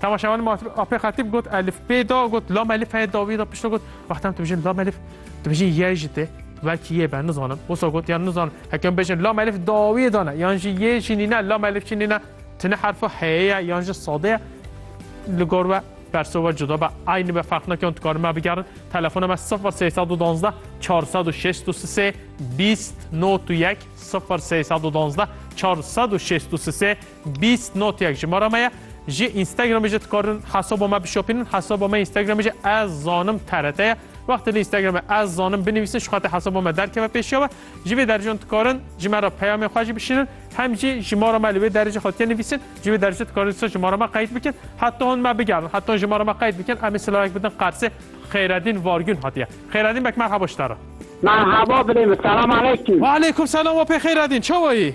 Temaşevanê ma Apê Xetîb got elif pê da got lam elif heye dawî da pişta got wexta em dibêjin lam elif dibêjin yê jî tê belkî yê be nizanim wisa got yan nizanim heke em bêjin lam elif dawî dane yan jî yê jî nîne lam elif jî nîne tune herfa heye ye yan jî sade ye li gor we perso we cuda be aynî be ferq nake hûn dikarin me bigerin telefona me 0312 463 20 01 0312 463 Bîst notyek ji me re maye. Ji Instagramê jî dikarin hesaba me bişopînin. Hesaba me Instagramê jî ez zanim TRT ye. Wextê li Instagramê ez zanim binivîsin ji xatir hesaba me derkeve pêşiya we. Ji vê dercan dikarin ji me re peyamên xwe jî bişînin. Hem jî ji ma re me li wê derê jî hatiye nivîsin. Ji vê derê jî dikarin dîsa ji ma re me qeyd bikin. Heta hûn me bigerin. Heta hûn ji me re me qeyd bikin. Em ê silayek bidin Qersê. Xêredîn Vargûn hatiye. Xêredîn bek merhaba ji te re. Merhaba birême selam aleykum. Waleykûm selam we pê Xêredîn çawa yî?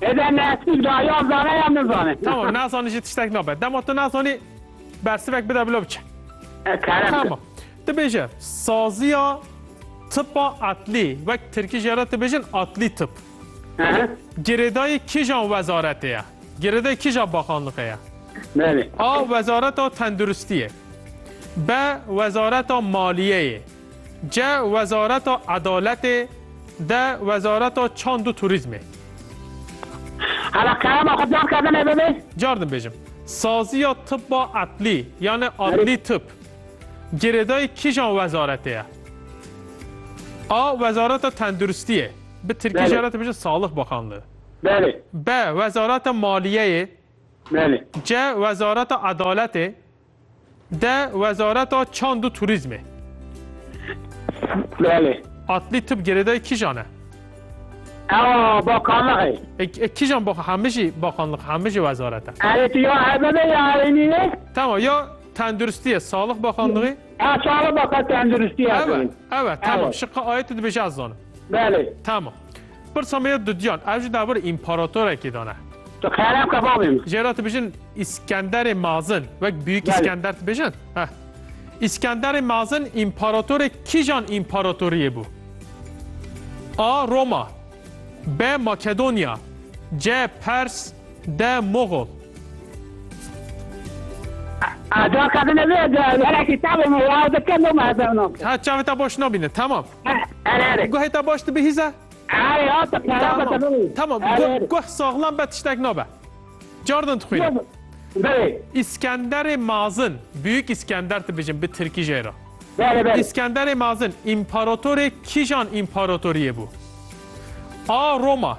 Hêdê nesmîk da ya zane ya min zane. Tamam nazanî jî tiştek nabe. Dema tu nazanî bersivek bide bila biçe. E, kerem. Tamam. Tu bêje saziya tipa atlî wek tirkî jê re tu bêjin atlî tip. Girêdayî kîjan wezaretê ye? Girêdayî kîja baxanlixê ye? Belê. A. Wezareta tenduristiyê. B. Wezareta maliyeyê. Ceh wezareta edaletê de wezareta çand û turîzmê. Hala kerema xwe car kerdin ê bibê? Car dibêjim. Saziya tibba edlî yanê adlî tib girêdayî kîjan wezaretê ye? A. Wezareta tenduristiyê, bi tirkî jî re dibêjin Salig Bakanlığı. Belê. B. Wezareta maliyeyê. Belê. C. Wezareta edaletê. De wezareta çand û turîzmê. Belê. Atlî tib girêdayê kîjan e? Ewa bakanlixê. E, e kîjan bakan hemî jî bakanlix hemî jî wezaret e. Erê tu ya hebebe ya erênî ne? Tamam ya tenduristiye salix bakanlixê. Ya salix bakan tenduristiye. Ewe, ewe tamam şiqa ayetê dibêje ez zanim. Belê. Tamam. Pirsa me ya dudiyan, ev ji dawir împaratorekî de ne. Tu xerab ke bavê min. Jê re dibêjin Îskenderê Mazin, wek Biyûk Îskender dibêjin. Heh. Îskenderê Mazin împaratorê kîjan împaratoriyê bû? A. Roma B. Makedonya C. Pers D. Moxol Ada kadın evi de hele kitabı mı ya da kendi mi hesabına? Ha çavê te boş nabîne, temam. Guhê te baş dibihîze? Tamam, guh saxlam be tiştek nabe. Cardin dixwîne. İskenderê Mazin, Büyük İskender dibijin bi Tirkî jê re. İskenderê Mazin, imparatorê kîjan imparatoriyê bû? A. Roma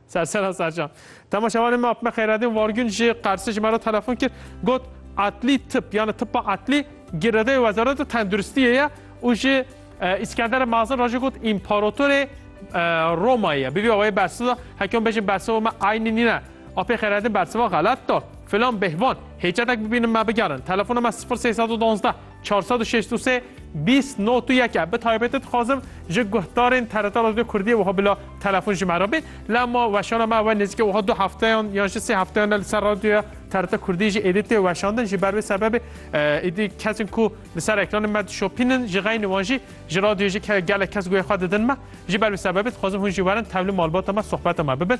Sersera Sercan. Temaşevanê me Apme Xeyradîn Vargün ji Qersê ji me re telefon kir, got Atlî tip yani tipa atlî girêdayê Wezareta Tenduristiyê ye û ji Îskendere Mazin re jî got împaratorê Romayê ye. Bi vî awayê bersiva heke hûn bêjin bersiva me eynî nîne. Apê Xeyradîn bersiva xelet da. Filan bêhvan hêcetek bibînin me bigerin. Telefona me 0312 Çar sed û şeş û sê bîst not û yek e. Bi taybetî dixwazim ji guhdarên TRT Radyoya Kurdiyê wiha bila telefon ji me re bê. La ma weşana me ew e nêzîkî wiha du hefteyan yan jî sê hefteyan e li ser radyoya TRT Kurdiyê jî êdî tê weşandin. Ji ber vê sebebê êdî kesên ku li ser ekranên me dişopînin ji xeynî wan jî ji radyoyê jî gelek kes guhê xwe didin me. Ji ber vê sebebê dixwazim hûn jî werin tevli malbata me sohbeta me bibin.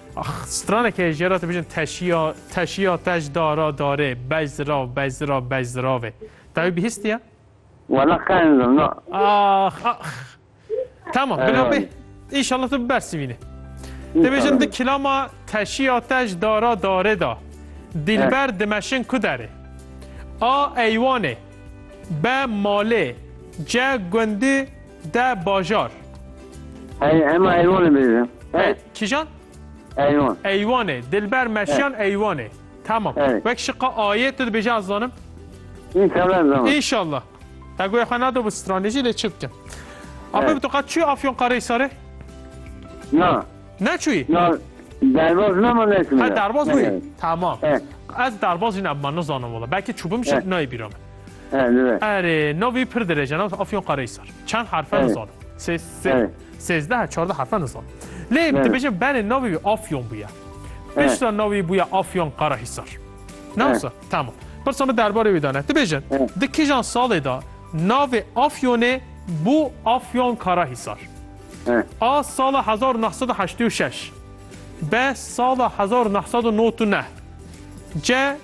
Ax, straneke jê ra dibêjin teşiya, teşiya, tej dara, darê, bej zirav, bej zirav, bej ziravê. Tewî bihîstiye? Wala xeyndim na. Ax, ax. Tamam, bila bê. Înşallah tu bibersivînê. Dibêjin di kilama teşiya, tej dara, darê da. Dilber dimeşin ku derê. A eywanê. B malê. C gundî De bajar. Ey, hema eywanê bêje. Ey. Kîjan? Eywan. Eywanê. Dilber meşiyan eywanê. Tamam. Ey. Wek şiqa ayê tu dibêje ez zanim? İnşallah ez zanim. İnşallah. Te goya xwe nado bi stranêjî lê çi bikim? Ape bi tu qet çûyî Afyonkarahisarê? Na. Ne çûyî? Na. Derbaz nema neçûyî. Ha derbaz bûyî. Tamam. Ez derbaz jî nebima nizanim wala. Belkî çûbim jî nayê bîra min. Erê no vî pir dirêj e no Afyon Qarahisar. Çend harf e nizanim. Sê sê sêzdeh çardeh harf e nizanim. Lê dibêjin berê no vî Afyon bûye. Pişta no vî bûye Afyon Qarahisar. Newsa tamam. Pirsa min derbarê wî dane. Dibêjin di kijan salê da navê Afyonê bû Afyon Karahisar. A sala hezar û neh sed û heştê û şeş. B sala hezar û neh sed û not û neh. C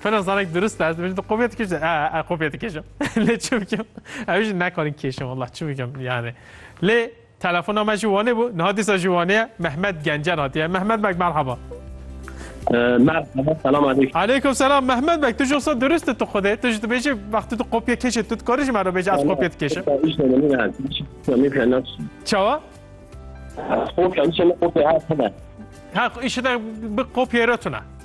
Fena zarek durust e, ez dibêjim tu kopya dikêşî, e, e kopya dikêşim. lê çi bikim? Ew jî nekarin kêşim wallah çi bikim yani. Lê telefona me jî wanê bû, niha dîsa jî wanê ye. Mehmet Gencer hatiye. Mehmet bek merhaba. Merhaba, selam aleyküm. Aleyküm selam Mehmet bek, tu jî olsa durust e tu xwedê, tu jî dibêjî wextê tu kopya kêşê tu dikarî ji me re bêjî ez kopya dikêşim. Çawa? Kopya, îşe ne kopya hate ne. Ha, îşe ne bi kopya re tune.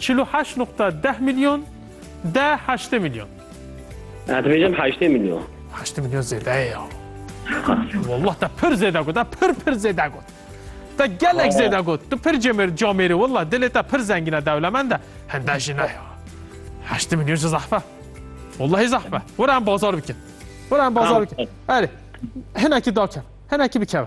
Çil û heşt nuqta deh milyon de heştê milyon. Ez dibêjim heştê milyon. Heştê milyon zêde ye ya. Wallah te pir zêde got, te pir pir zêde got. Te gelek zêde got. Tu pir cemêr camêrî wallah dilê te pir zengîn e dewlemend e. Hende jî ne ya. Heştê milyon ji zehf e. Wallahî zehf e. Were em bazar bikin. Were em bazar bikin. Erê hinekî dakeve. Hinekî bikeve.